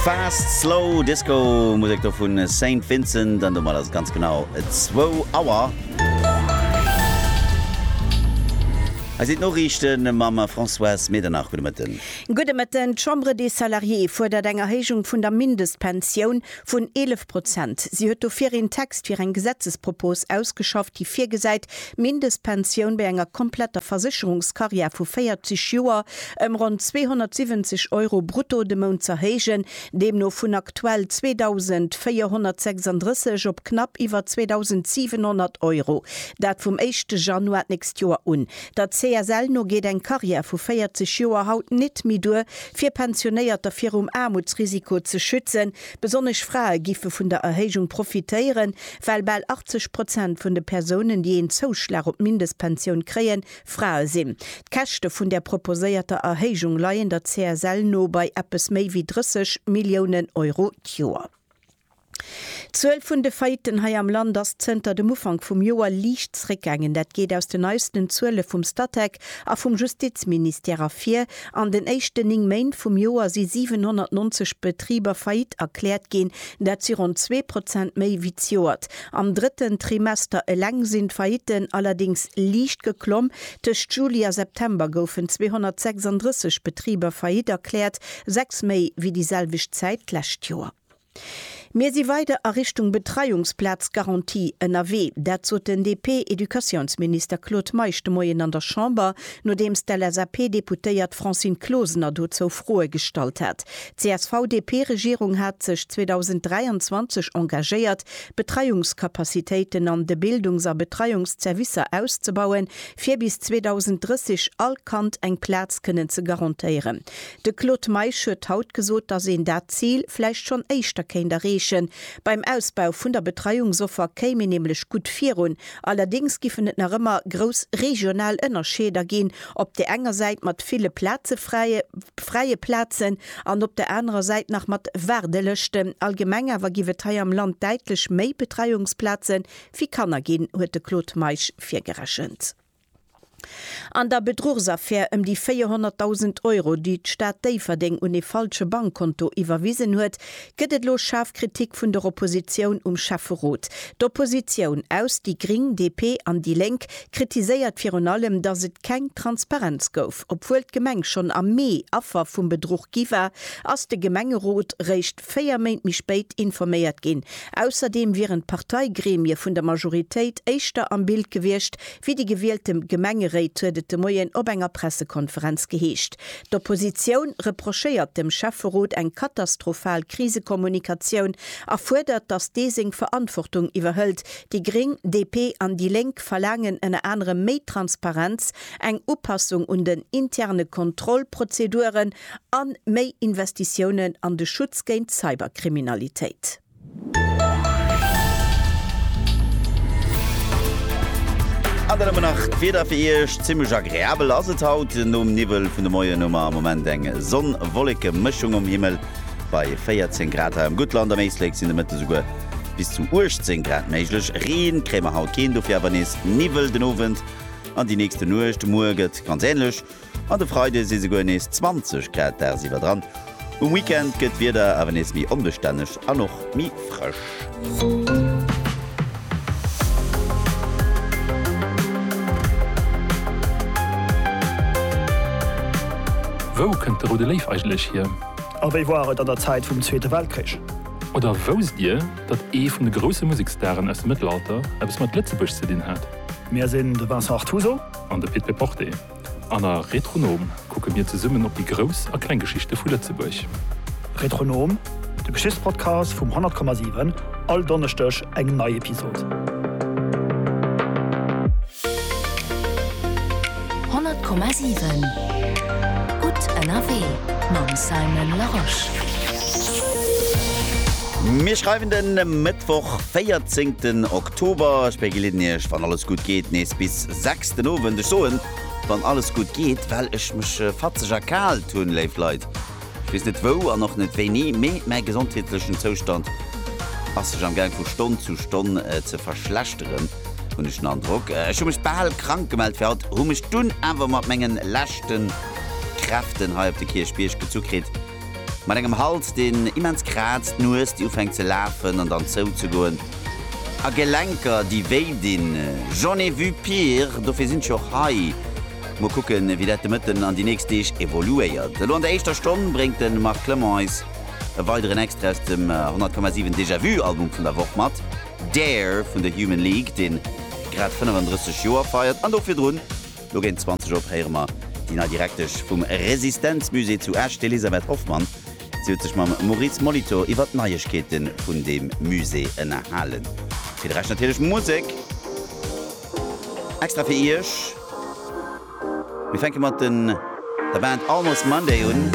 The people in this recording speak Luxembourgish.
Fast Slow Disco Musek do vun Saint Vincent an domat ass et ganz genau zwou Auer. Hei sinn d'Noriichte mam Françoise Medernach. Gudde Mëtten. Gudde Mëtten. D'Chambre des Salariés fuerdert eng Erhéijung vun der Mindestpensioun Vun 11 Prozent. Si huet dofir een Text fir eng Gesetzespropos ausgeschafft, déi virgesäit, d'Mindestpensioun bei enger kompletter Versécherungskarriär vu 40 Joer ëm ronn 270 Euro brutto de Mount z'erhéijen, deemno vun aktuell 2.436 op knapp iwwer 2.700 Euro, dat vum éischte Januar d'nächst Joer un. Der CSL no geet eng Karriär vu 40 Joer haut nit méi duer, fir Pensionéierter virum Aarmutsrisiko ze schützen. Besonnesch Frae giffe vun der Erhéijung profitéieren, well bal 80 Prozent vun de Persounen, déi een Zouschlag op d'Mindestpensioun kréien, Frae sinn. D'Käschte vun där proposéierter Erhéijung leien der CSL no bei eppes méi wéi 30 Milliounen Euro d'Joer. D'Zuel vun de Faillitten hei am Land ass zënter dem Ufank vum Joer liicht zréckgaangen. Dat geet aus den neisten Zuele vum Statec a vum Justizministère ervir. An den éischten 9 Méint vum Joer si 790 Betriber faillite erkläert ginn. Dat si ronn zwee Prozent méi wéi d'Joert. Am drëtten Trimester eleng sinn d'Faillitten allerdéngs liicht geklomm. Tëscht Juli a September goufen 236 Betriber faillite erkläert, sechs méi wéi déi selwecht Zäit d'lescht Joer. Mir si weider a Richtung Betreiungsplazgarantie ënnerwee. Dat sot den DP-Educatiounsminister Claude Meisch de Moien an der Chamber, nodeems d'LSAP-Deputéiert Francine Closener dozou Froe gestallt hat. D'CSV-DP-Regierung hat sech 2023 engagéiert, d'Betreiungscapacitéiten an de Bildungs a Betreiungsservicer auszebauen, fir bis 2030 all Kand eng Plaz kënnen ze garantéieren. De Claude Meisch huet haut gesot, datt een dat Zil vläicht schonn éischter kéint erreechen. Beim Ausbau vun der Betreiungsoffer kéim een nämlech gutt virun. Allerdéngs giffen et nach ëmmer grouss regional Ënnerscheeder ginn, op där enger Säit mat ville Plaze fräie fräie Plazen an op der anerer Säit nach mat Waardelëschten. Allgemeng awer giff et hei am Land däitlech méi Betreiungsplaze fir Kanner ginn, huet de Claude Meisch virgerechent. An der Bedruchsaffär ëm déi 400.000 Euro, déi d'Stad Déifferdeng un ee falsche Bankkonto iwwerwisen huet, gëtt et elo schaarf Kritik vun der Oppositioun um Schäfferot. D'Oppositioun aus déi Gring, DP an déi Lénk kritiséiert virun allem, datt et keng Transparenz gouf. Obwuel d'Gemeng schonn am Mee Affer vum Bedruch gi war, ass de Gemengerot réischt véier Méint méi spéit informéiert ginn. Ausserdeem wieren d'Parteigremie vun der Majoritéit éischter am Bild gewiescht wéi déi gewielte Gemengeréit, huet et de Moien op enger Pressekonferenz geheescht. D'Oppositioun reprochéiert dem Schäfferot eng katastrophal Krisekommunikatioun a fuerdert, datt dee seng Verantwortung iwwerhëlt. Déi Gréng, DP an déi Lénk verlaangen ënner anerem méi Transparenz, eng Upassung un den interne Kontrollprozeduren, An méi Investitiounen an de Schutz géint Cyberkriminalitéit. An dann hu mer nach d'Wieder fir Iech. Zimmlech agreabel ass et haut. Nom Niwwel vun de Moien hu mer am Moment eng Sonn-Wolleke-Mëschung um Himmel bei 14 Grad hei am Guttland. Am Éislek sinn de Mëtte souguer bis zu 18 Grad méiglech. Ree kréie mer haut keen, dofir awer nees Niwwel den Owend an déi nächste Nuecht. Muer gëtt ganz änlech An de Freide si souguer nees 20 Grad dagsiwwer dran. Um Weekend gëtt d'Wieder awer nees méi onbestänneg an och méi frësch. Wou kënnt de Roude Léiw eigentlech hier? A wéi war et an der Zäit vum Zweete Weltkrich? Oder wousst Dir, datt ee vun de grousse Museksstaren aus dem Mëttelalter eppes mat Lëtzebuerg ze dinn hat? Mir sinn de Vincent Artuso. An de Pit Peporte. An a Retronom kucke mir zesummen op déi grouss a kleng Geschichte vu Lëtzebuerg. Retronom, de Geschichtspodcast vum 100,7, all Donneschdeg eng nei Episod. 100,7 Gutt ënnerwee mam Simon Larosche. Mir schreiwen de Mëttwoch 14 Oktober. Ech begleeden Iech, wann alles gutt geet, nees bis. 6 den Owend. Ech soen, wann alles gutt geet, well ech mech fatzeg erkaalt hunn. Léif Leit, ech weess net wou an och net wéini, mee mäi gesondheetlechen Zoustand ass sech am Gaang vu Stonn zu Stonn ze verschlechteren, hunn ech den Androck. Ech hu mech bal krank gemellt fir haut, hu mech dunn awer mat mengen leschten Kräften hei op de Kierchbierg gezu kritt. Mat engem Hals, deen immens kraazt, Nues, déi ufänkt ze lafen an dann zouzegoen, a Gelenker, déi wéi dinn. J'en ai vu pire, dofir sinn ech och hei. Mol kucken, wéi dat de Mëtten an déi nächst Deeg evoluéiert. Elo an der éischter Stonn bréngt de Marc Clement eis e weideren Extra aus dem 100,7 Déjà Vu Album vun der Woch mat, Dare vun The Human League, dee grad 35 Joer feiert, an do virdrun. No géint 20 op héiere mer déi nei Direktesch vum Resistenzmusée zu Esch, d'Elisabeth Hoffmann. Si huet sech mam Maurice Molitor iwwert d'Neiegkeete vun deem Musée ënnerhalen. Fir de Rescht natierlech Musek extra fir Iech. Mir fänke mat den der Band Almost Monday un.